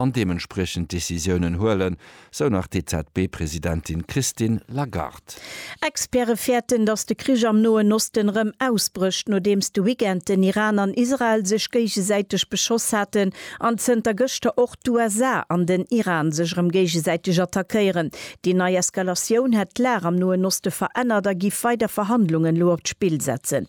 an deementspriechend Decisiounen huelen, sou nach d'EZB-Presidentin Christine Lagarde. Experte fäerten, datt de Krich am Noen Osten erëm ausbrécht, nodeems de Weekend den Iran an Israel sech géigesäiteg beschoss haten an zënter gëschter och d'USA an den Iran sech erëm géigesäiteg attackéieren. Déi nei Eskalatioun hätt d'Lag am Noen Oste verännert a giff weider Verhandlungen elo op d'Spill setzen.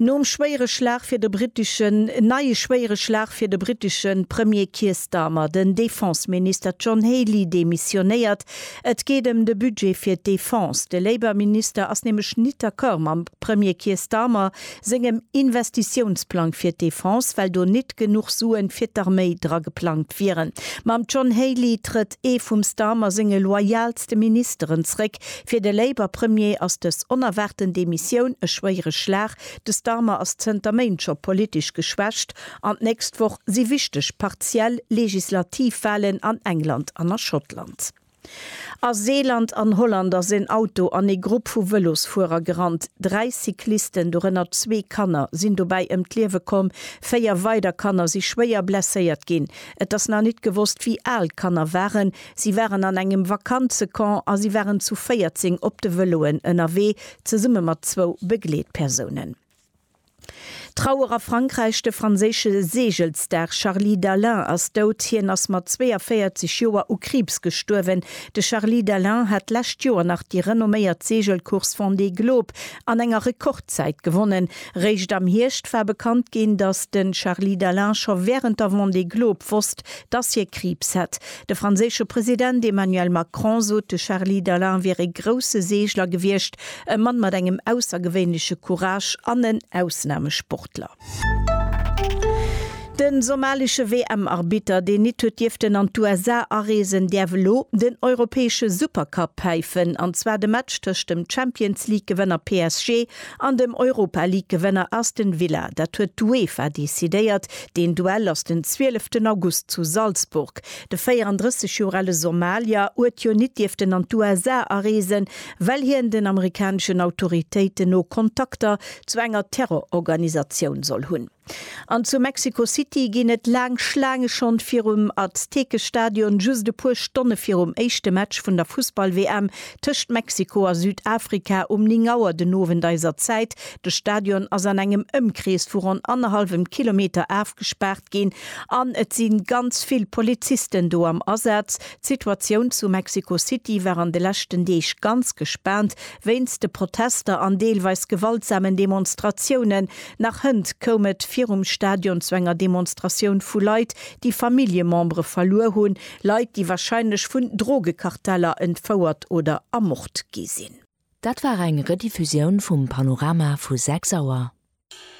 Nom schwéiere Schlag fir de briteschen Neie schwéiere Schlag fir de britesche Premier Keir Starmer, den Defense-Minister John Healey demissionéiert. Et geet ëm de Budget fir d'Defense. De Labour-Minister ass nämlech nit d'accord mam Premier Keir Starmer sengem Investitiounsplang fir d'Defense, well do nit genuch Sue fir d'Arméi dra geplangt wieren. Mam John Healey trëtt ee vum Starmer senge loyalste Ministeren zréck, Fir de Labour Premier ass dës onerwaarten Demissioun e schwéiere Schlag. De Starmer ass zënter Méint scho politesch geschwächt an d'nächst Woch si wichteg partiell legislativ Walen an England an a Schottland. A Seeland an Holland ass en Auto an ee Grupp vu Vëlosfuerer gerannt. Dräi Cyclisten, dorënner zwee Kanner, sinn dobäi ëm d'Liewe komm. Véier weider Kanner si schwéier blesséiert ginn. Et ass nach nit gewosst, wéi al d'Kanner waren. Si waren an engem Vakanzecamp a si waren zu 14 op de Vëloen ënnerwee, zesumme mat zwou Begleetpersounen. Trauer a Frankräich De franséische Seegelsstar Charly Dalin ass dout. Hien ass mat 42 Joer u Kriibs gestuerwen. De Charly Dalin hat d'lescht Joer nach déi renomméiert Seegelcourse Vendée Globe an enger Rekordzäit gewonnen. Réischt am Hierscht war bekannt ginn, datt de Charly Dalin scho wärend der Vendée Globe wosst, datt hie Kriibs hätt. De franséische President Emmanuel Macron sot, de Charly Dalin wier ee grousse Seegler gewiescht, e Mann mat engem aussergewéinleche Courage an en Ausnamesportler. De somalische WM-Arbitter, deen nit huet dierften an d'USA areesen, däerf elo den europäesche Supercup päifen, an zwar de Match tëscht dem Champions-League-Gewënner PSG An dem Europa League Gewënner Aston Villa, dat huet d'UEFA decidéiert. Deen Duell ass den 12 ten August zu Salzburg. De 34 Joer ale Somalier uet jo nit dierften an d'USA areesen, well hien den amerikaneschen Autoritéiten no Kontakter zu enger Terrororganisatioun soll hunn. An zu Mexico City ginn et laang Schlaange schonn virum Aztekestadion, just e puer Stonne virum éischte Match vun der Fussball-WM tëscht Mexiko a Südafrika um 9 Auer den Owend eiser Zäit. De Stadion ass an engem Ëmkrees vu ronn annerhallwem Kilometer afgespaart ginn an et si ganz vill Polizisten do am Asaz. D'Situatioun zu Mexico City war an de leschten Deeg ganz gespaant wéinst de Protester an deelweis gewaltsamen Demonstratiounen. Nach hënt koum et virum Stadion zu enger Demonstratioun vu Leit, déi Familljemembere verluer hunn, Leit, déi warscheinlech vun Drogekarteller entfouert oder ermort gi sinn. Dat war eng Rediffusioun vum Panorama vu 6 Auer.